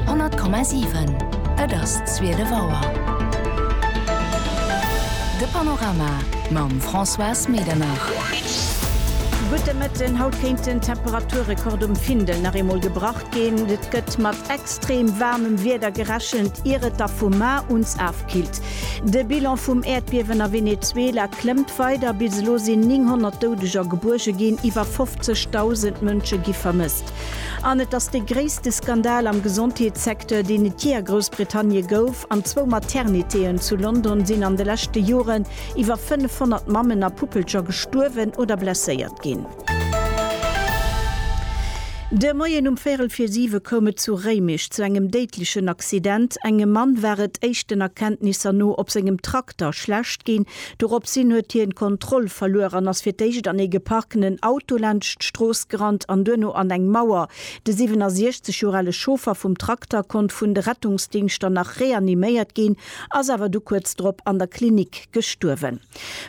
100,7 Et ass zwielef Auer. De Panorama mam Françoise Medernach. Gudde Mëtten, Haut kéinten d'Temperaturrekord um Findel nach eemol gebrach ginn. Et gëtt mat extrem waarmem Wieder gerechent, ier et da vum Mar uns afkillt. De Bilan vum Äerdbiewen a Venezuela klëmmt weider. Bis elo sinn 900 Doudeger gebuerge ginn, iwwer 50.000 Mënsche gi vermësst. An et ass de gréisste Skandal am Gesondheetssecteur, deen et jee a Groussbritannie gouf. An zwou Maternitéen zu London sinn an de leschte Joren iwwer 500 Mammen a Puppelcher gestuerwen oder blesséiert ginn. De Moien um Véierel vir siwe koum et zu Réimech zu engem déidlechen Accident. Engem Mann war et éischten Erkenntnisser no op sengem Trakter schlecht ginn, Doropshin huet hien d'Kontroll verluer an ass fir d'éischt an ee geparkenen Auto laanscht d'Strooss gerannt an duerno an eng Mauer. De 67 Joer ale Chauffer vum Trakter konnt vun de Rettungsdingschter nach reaniméiert ginn, ass awer du kuerz drop an der Klinik gestuerwen.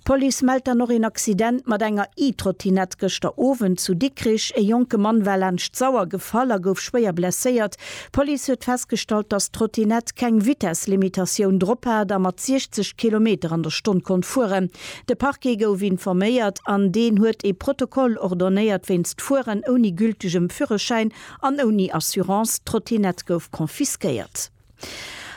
D'Police mellt dann och een Accident mat enger E-Trottinette gëschter Owend zu Dikrich. Ee jonke Mann war laanscht d'Sauer gefall a gouf schwéier blesséiert. D'Police huet festgestallt, dass d'Trottinett keng Vitesslimitatioun drop hat a mat 60 Kilometer an der Stonn konnt fueren. De Parquet gouf informéiert an deen huet ee Protokoll ordonnéiert wéinst Fueren ouni gültegem Führerschäin an ouni Assurance. D'Trottinett gouf confisquéiert.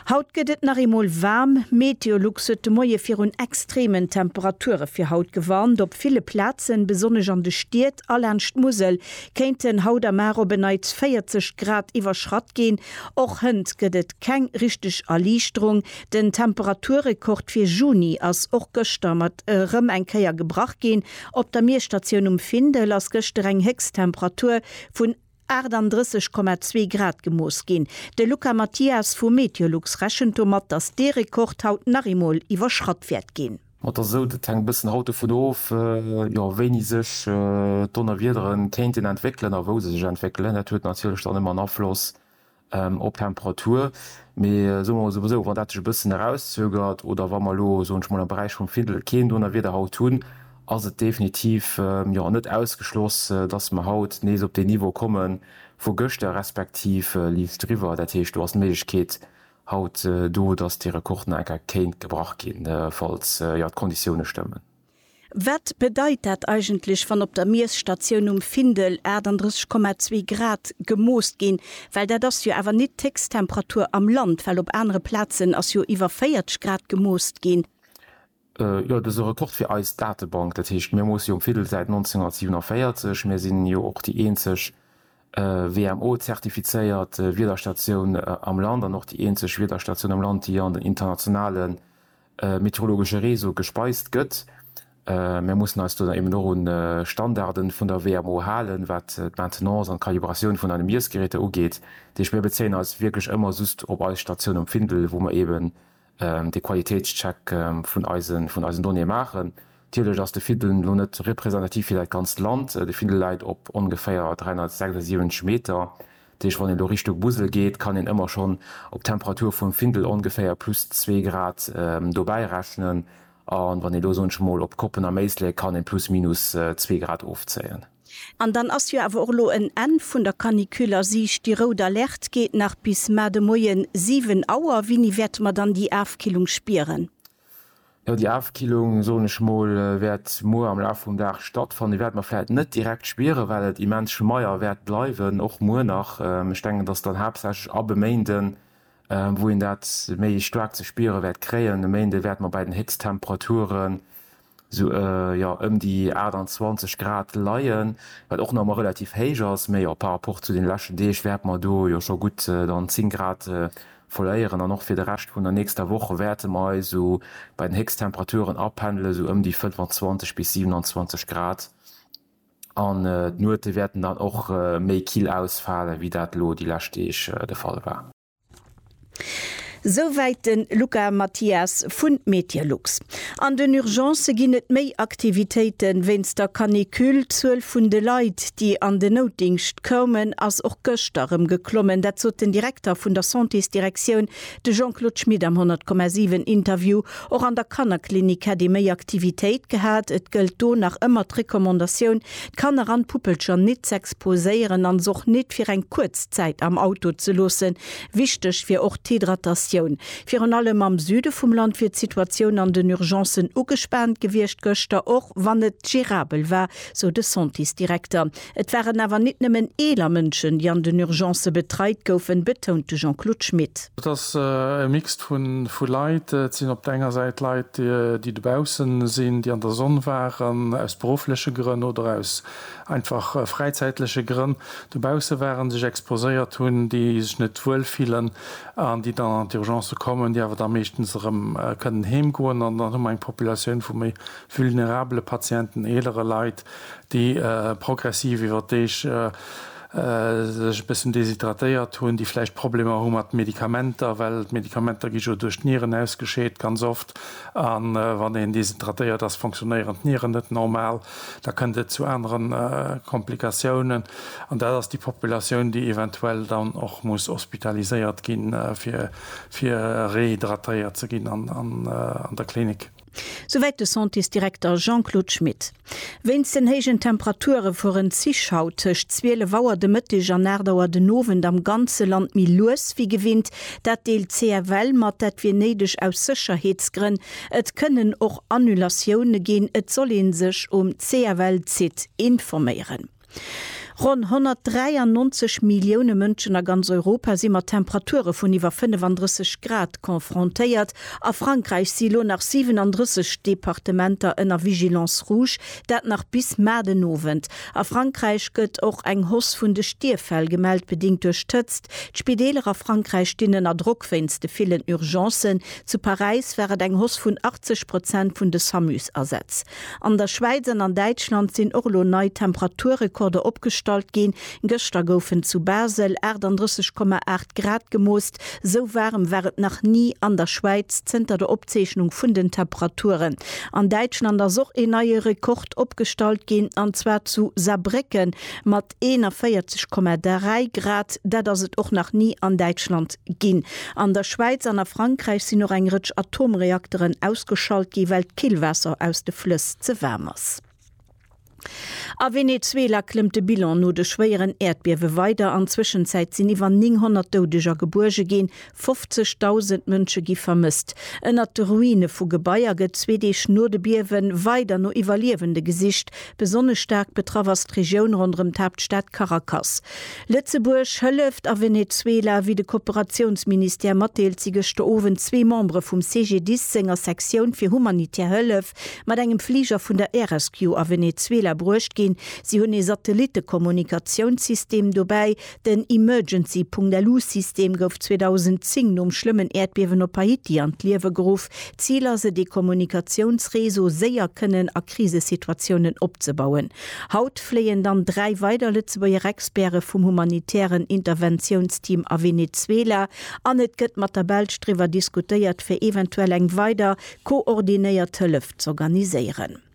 Haut gëtt et nach eemol waarm. Meteolux huet de Moie virun extreemen Temperature fir haut gewarnt. Op ville Plazen, besonnesch an de Stied a laanscht d'Musel, kéinten haut am Aach op en Neits 40 Grad iwwerschratt ginn. Och hënt gëtt et keng richteg Erliichterung. Den Temperaturrekord fir Juni ass och gëschter mat erëm eng Kéier gebrach ginn. Op der Miesstatioun um Findel ass gëschter eng Héchsttemperatur vun 38,2 Grad gemooss ginn. De Luca Mathias vu Meteolux rechent domat, datt dee Rekord haut nach eemol iwwerschratt wäert ginn. Ma da sot et hänkt e bëssen haut dovun of, jo, wéini sech d'Donnerwiedere kéinten entwéckelen a wou se sech entwéckelen. Dat huet natierlech dann ëmmer en Afloss op d'Temperatur. Mee soe mer emol souwisou, wann dat sech e bëssen erauszögert oder wa mer elo, soen ech emol, am Beräich vum Findel keen Donnerwieder haut hunn, ass et definitiv, jo, net ausgeschloss, dass mer haut nees op deen Niveau komme vu gëschter respektiv liicht driwwer. Dat heescht, do ass d'Méiglechkeet Haut, do dass dee Rekord nach eng Kéier kéint gebrach ginn, falls jo d'Konditioune stëmmen. Wat bedeit dat eigentlech, wann op der Miesstatioun um Findel 38,2 Grad gemoost ginn? Well dat ass jo awer nit d'héchst Temperatur am Land, well op anere Plazen ass jo iwwer 40 Grad gemoost ginn. Jo, dëse Rekord fir eis Datebank, dat heescht mir moosse jo um Fiddel säit 1947, mir sinn jo och déi eenzeg WMO-zertifizéiert Wiederstatioun am Land an och déi eenzeg Wiederstatioun am Land, déi an den internationale meteorologesche Réseau gespeist gëtt. Mir mussen eis do dann eben och un Standarde vun der WMO halen, wat d'Maintenance an d'Kalibratioun vun eise Miessgeräter ugeet. Dat heescht mir bezéien eis wierklech ëmmer just op eis Statioun um Findel, wou mer eben dee Qualitéitscheck vun eisen Donnéeë maachen. Natierlech ass de Findel elo net representativ fir dat ganzt Land. De Findel läit op ongeféier 376 Meter. Dat heescht, wann een elo Richtung Musel geet, kann een ëmmer schonn op d'Temperatur vum Findel ongeféier plus zwee Grad dobäi rechnen. A wann een elo, soen ech emol, op Koppen a Méislek, kann ee plus minus zwee Grad ofzéien. An dann ass jo awer och elo en Enn vun der Canicule a Siicht. Déi rout Alerte geet nach bis mar de Moie 7 Auer. Wéini wäerte mer dann déi Afkillung spieren? Jo, déi Afkillung, soen ech mol, wäert muer am Laf vum Dag stattfannen. Déi wäerte mer vläicht net direkt spieren, well et immens schmeier wäert bleiwen, och muer nach. Ech denken, et ass dann haaptsächlech ab e Méinde wou een dat méi staark ze spiere wäert kréien. E Méinde wäerte mer bei den Héchsttemperature sou jo ëm déi 28 Grad leien, wat och nach emmer relativ héich ass, mee jo par rapport zu den leschten Deeg wäerte mer do jo scho gutt dann 10 Grad verléieren an och fir de Rescht vun der nächster Woch wäerte mer eis sou bei den Héchsttemperaturen apendelen, sou ëm déi 25 bis 27 Grad an d'Nuete wäerten dann och méi kill ausfalen, wéi dat elo déi lescht Deeg de Fall war. Souwäit de Luca Mathias vun Meteolux. An den Urgencë ginn et méi Aktivitéite wéinst der Canicule. D'Zuel vun de Leit, déi an den Noutdingscht koumen, ass och gëschter erëm geklommen. Dat sot den Direkter vun der Santésdirektioun, de Jean-Claude Schmit am 10,7 Interview. Och an der Kannerklinik hätt ee méi Aktivitéit gehat. Et gëllt do nach ëmmer d'Recommandatioun, d'Kanner an d'Puppelcher nit z'exposéieren an s'och nit fir eng kuerz Zäit am Auto ze loossen. Wichteg wier och d'Hydratatioun. Virun allem am Süde vum Land wier d'Situatioun an den Urgencen ugespaant gewiescht gëschter, och wann et gerabel war, sou de Centis-Direkter. Et waren awer nit nëmmen eeler Mënschen, déi an den Urgencë betreit goufen, betount de Jean-Claude Schmit. Et ass e Mixed vu Leit. Et sinn op der enger Säit Leit, déi dobausse sinn, déi an der Sonn waren, aus beruffleche Grënn oder aus einfach fräizäitleche Grënn dobausse waren, sech exposéiert hunn, déi sech net wuel fillen an déi dann an d'Urgencë kommen, déi awer da meeschtens erëm kënnen heem goen. An dann hu mer eng Populatioun vu méi vulnerabele Patienten, eelere Leit, déi progressiv iwwer d'Deeg, sech e bëssen deshydratéiert hunn, déi vläicht Problemer hu mat Medikamenter, well d'Medikamenter gi jo duerch d'Nieren ausgescheet, ganz oft, a wann een deshydratéiert ass, fonctionnéieren d'Nieren net normal, da kënnt et zu aneren Komplikatiounen. An dat ass déi Populatioun, déi eventuell dann och muss hospitaliséiert ginn, fir rehydratéiert ze ginn an der Klinik. Souwäit de Centis-Direkter Jean-Claude Schmit. Wéinst den héijen Temperature fueren d'Zich haut tëscht 12 Auer de Mëtteg an 8 Auer den Owend am ganze Land méi lues wéi gewinnt. Dat deelt d'CFL mat, dat wier néideg aus Sécherheetsgrënn. Et kënnen och Annulatioune ginn, et soll ee sech um CFL-Site informéieren. Ronn 193 Millioune Mënschen a ganz Europa si mat Temperature vun iwwer 35 Grad confrontéiert. A Frankräich si lo nach 37 Departementer ënner Vigilance rouge, dat nach bis mar den Owend. A Frankräich gëtt och eng Hausse vun de Stierffäll gemellt, bedingt duerch d'Hëtzt. D'Spideeler a Frankräich stinn ënner Drock wéinst de villen Urgencen. Zu Paräis war et eng Hausse vun 80 Prozent vun de Samus-Asätz. An der Schwäiz an an Däitschland sinn och elo nei Temperaturrekorder opgestallt ginn. Gëschter goufen zu Basel 38,8 Grad gemoost. Sou waarem war et nach ni an der Schwäiz zënter der Opzeechnung vun den Temperaturen. An Däitschland ass och een neie Rekord opgestallt ginn, an zwar zu Saarbrécken mat. 41,3 Grad, dat ass et och nach ni an Däitschland ginn. An der Schwäiz an a Frankräich sinn och eng Rëtsch Atomreakteren ausgeschalt gi well d'Killwaasser aus de Flëss ze waarm ass. A Venezuela klëmmt de Bilan no de schwéieren Äerdbiewe weider. An Zwëschenzäit sinn iwwer 900 Doudeger gebuerge ginn, 50.000 Mënsche gi vermësst. Ënnert de Ruine vu Gebaier gëtt zwee Deeg no de Biewe weider no Iwwerliewende gesicht. Besonnesch staark betraff ass d'Regioun ronderëm d'Haaptstad Caracas. Lëtzebuerg hëlleft a Venezuela. Wéi de Kooperatiounsministère matdeelt, si gëschter Owend zwee Membere vum CGDIS senger Sektioun fir humanitär Hëllef mat engem Fliger vun der Air-Rescue a Venezuela bruecht ginn. Si hunn ee Satellittekommunikatiounssystem dobäi, Den Emergency.lu-System gouf 2010 nom schlëmmen Äerdbiewen op Haiti an d'Liewe geruff. Zil ass et, ee Kommunikatiounsreseau séier kënnen a Krisesituatiounen opzebauen. Haut fléien dann dräi weider Lëtzebuerger Experte vum humanitären Interventiounsteam a Venezuela an et gëtt mat der Belsch driwwer diskutéiert, fir eventuell eng weider koordinéiert Hëllef z'organiséieren.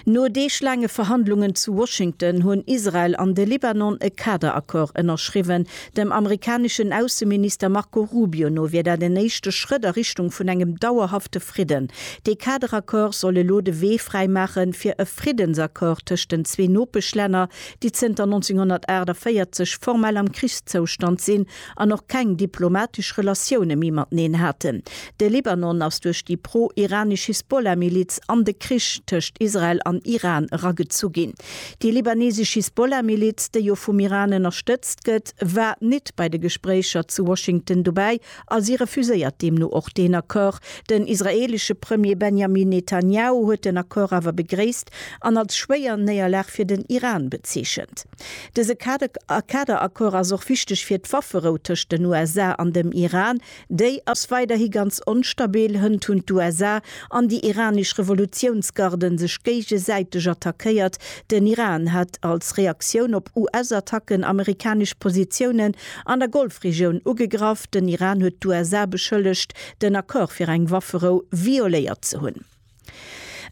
No deeglaange Verhandlungen zu Washington hunn Israel an de Libanon e Kaderaccord ënnerschriwwen. Dem amerikaneschen Ausseminister Marco Rubio no wier dat en éischte Schrëtt a Richtung vun engem dauerhafte Fridden. Dee Kaderaccord soll elo de Wee fräimaache fir e Friddensaccord tëscht den zwee Nopeschlänner, déi zënter 1948 formell am Krichszoustand sinn, an och keng diplomatesch Relatioune méi mateneen haten. De Libanon ass duerch déi pro-iranesch Hisbollah-Miliz an de Krich tëscht Israel an Iran eragezu ginn. Déi libanesesch Hisbollah-Miliz, déi jo vum Iran ënnerstëtzt gëtt, war nit bei de Gespréicher zu Washington dobäi a si refuséiert deemno och deen Accord. Den israeelesche Premier Benjamin Netanjahu huet den Accord awer begréisst an als schwéier Néierlag fir den Iran bezeechent. Dëse Kaderaccord ass och wichteg fir d'Wafferou tëscht den USA an dem Iran. Déi ass weiderhi ganz onstabil. Hënt hunn d'USA an déi iranesch Revolutiounsgarde sech géigesäiteg attackéiert. Den Iran hat als Reaktioun op US-Attacken amerikanesch Positiounen an der Golfregioun ugegraff. Den Iran huet d'USA beschëllegt, den Accord fir eng Wafferou violéiert ze hunn.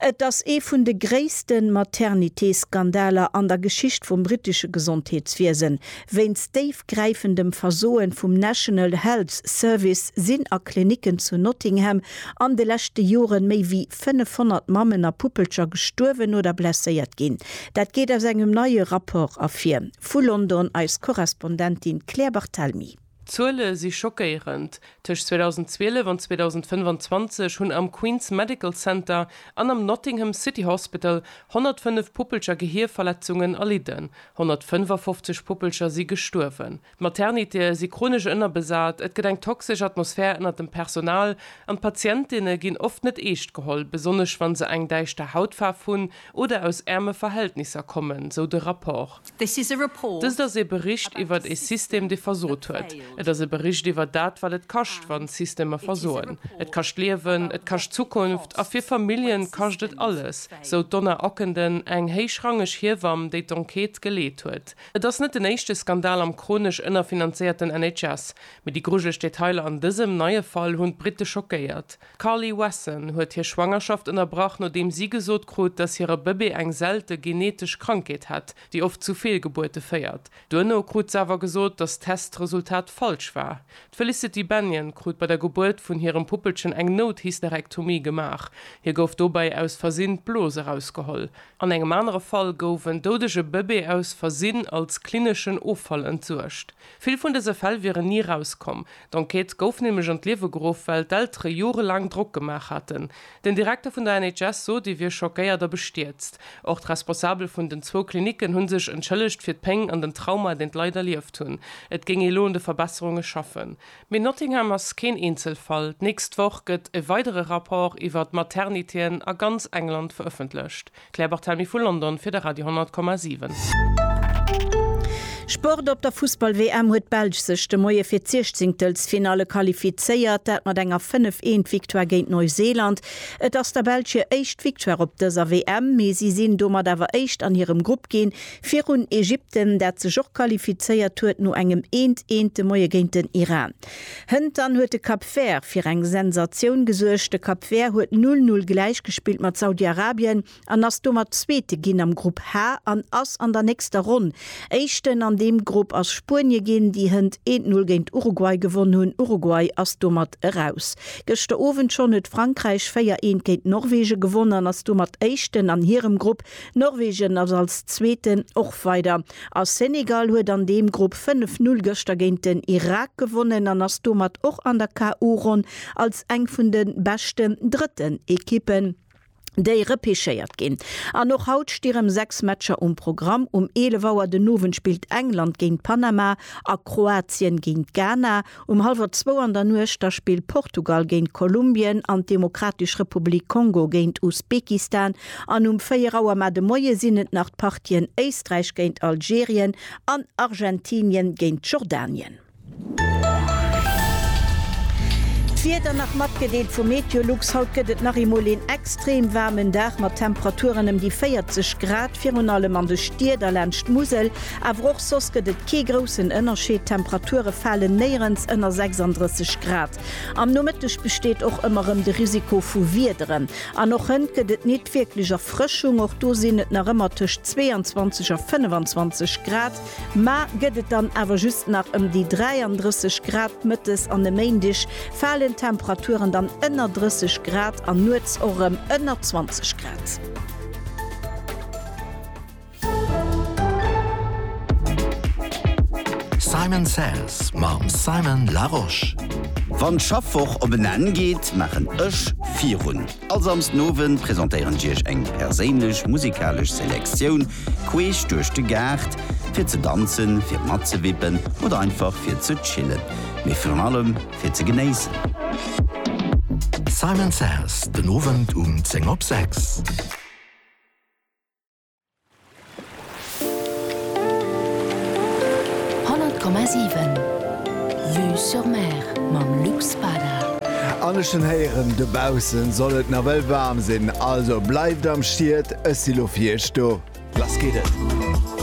Et ass ee vun de gréisste Maternité-Skandaler an der Geschicht vum brittesche Gesondheetswiesen. Wéinst déifgräifendem Versoen vum National Health Service sinn a Klinicken zu Nottingham an de leschte Joren méi wéi 500 Mammen a Puppelcher gestuerwen oder blesséiert ginn. Dat geet aus engem neie Rapport ervir. Vu London eis Korrespondentin Claire Barthelmy. D'Zuele si schockéierend, Tëscht 2012 an 2025 hunn am Queen's Medical Center an am Nottingham City Hospital 105 Puppelcher Gehierverletzungen erlidden. 155 Puppelcher si gestuerwen. D'Maternitéë si chronesch ënnerbesat, et gëtt eng toxesch Atmosphär ënnert dem Personal an d'Patientinne ginn oft net eescht geholl, besonnesch wa se eng däischter Hautfaarf hunn Oder aus äerme Verhältnisser kommen, sou de Rapport. Dëst ass ee Bericht iwwert ee System, dee versot huet. Et ass e Bericht iwwert dat, wat et kascht, wann Systemer versoen. Et kascht Liewen, et kascht Zukunft, a fir Familljen kascht et alles, sou d'Donna Ockenden, eng héichrangeg Hiewamm, déi d'Enquête geleet huet. Et ass net den éischte Skandal am chronesch ënnerfinanzéierten NHS. Mee déi grujeleg Detailer an dësem neie Fall hunn d'Britte schockéiert. D'Carly Wesson huet hir Schwangerschaft ënnerbrach, nodeem si gesot krut, datt hire Bëbee eng selte genetesch Krankheet hätt, déi oft zu Feelgebuerte féiert. Duerno krut se awer gesot, datt d'Testresultat falsch war. D'Felicity Bennion krut bei der Gebuert vun hirem Puppelchen eng Nouthysterektomie gemaach. Hir gouf dobäi aus Versinn d'Blos erausgeholl. An engem anere Fall gouf en doudege Bëbee aus Versinn als klineschen Offall entsuergt. Vill vun dëse Fäll wieren ni erauskomm. D'Enquête gouf nämlech an d'Liewe geruff, well d'Eltere jorelaang Drock gemaach haten. Den Direkter vun der NHS sot, ee wier schockéiert a bestierzt. Och d'Responsabel vun den zwou Klinicken hu sech entschëllegt fir d'Péng an den Trauma, deen d'Leit erlieft hunn. Et géing ee lo un de Verbesserunge schaffen. Mee Nottingham ass keen Eenzelfall. D'nächst Woch gëtt e weidere Rapport iwwer d'Materniteeën a ganz England verëffentlecht. D'Claire Barthelmy vu London fir de Radio 10,7. Sport, Op der Fussball-WM huet d'Belsch sech de Moie fir d'Siechzéngtelsfinalle qualifizéiert, dat mat enger 5, 1 Victoire géint Neuseeland. Et ass der Belsch hir éischt Victoire op dëser WM, mee si sinn domat awer éischt an hirem Grupp ginn, virun Ägypten, dat sech och qualifizéiert huet no engem 1, 1 de Moie géint den Iran. Hënt dann huet de Cap Vert fir eng Sensatioun gesuergt. De Cap Vert huet 'null null' gläich gespillt mat Saudi-Arabien an ass domat Zweete ginn am Grupp H an ass an der nächster Ronn Éischten. An deem Grupp ass Spuenie ginn, déi hënt eent Null géint Uruguay gewonn hunn. Uruguay ass domat eraus. Gëschter Owend schonn huet Frankräich véier eent géint Norwege gewonn an ass domat Éischten an hirem Grupp. Norwegen ass als Zweeten och weider a Senegal huet an deem Grupp 5 Null gëschter géint den Irak gewonnen an ass domat och an der KO-Ronn als eng vun de beschten drëtten Ekippen, déi repechéiert ginn. An och haut sti rëm 6 Matcher um Programm. Um 11 Auer den Owend spillt England géint Panama a Kroatien géint Ghana. Um hallwer zwou an der Nuecht da spillt Portugal géint Kolumbien an d'Demokratesch Republik Kongo géint Usbekistan an um véier Auer mar de Moie sinn et nach d'Partien Éisträich géint Algerien an Argentinien géint Jordanien. D'Wieder nach matgedeelt vu Meteolux, Haut gëtt et nach eemol een extrem waarmen Dag mat Temperaturen ëm déi 40 Grad, virun allem an de Stied a laanscht d'Musel. Awer och soss gëtt et kee groussen Ënnerscheed, d'Temperature falen néierens ënner 36 Grad. Am Nomëtteg besteet och ëmmer rëm de Risiko vu Wiederen. An och hënt gëtt et nit wierklech Erfrëschung, och do sinn et nach ëmmer tëscht 22 a 25 Grad. Ma gëtt et dann awer just nach ëm déi 33 Grad. Mëttes an e Méindeg falen d'Temperaturen dann ënner 30 Grad an nuets och rëm ënner 20 Grad. Simon Says mam Simon Larosche. Wann d'Schaffwoch op en Enn geet, maachen ech virun. All Samsden Owend presentéieren ech iech eng perséinlech musikalesch Selektioun queesch duerch de Gaart, fir ze danzen, fir matzewippen oder einfach fir ze chillen, mee virun allem fir ze genéissen. Simon Says, den Owend um 10 op 6. An ech hunn héieren, dobausse soll et nawell waarm sinn, also bleift am Schiet, ech si lo fir iech do. Lass geet et!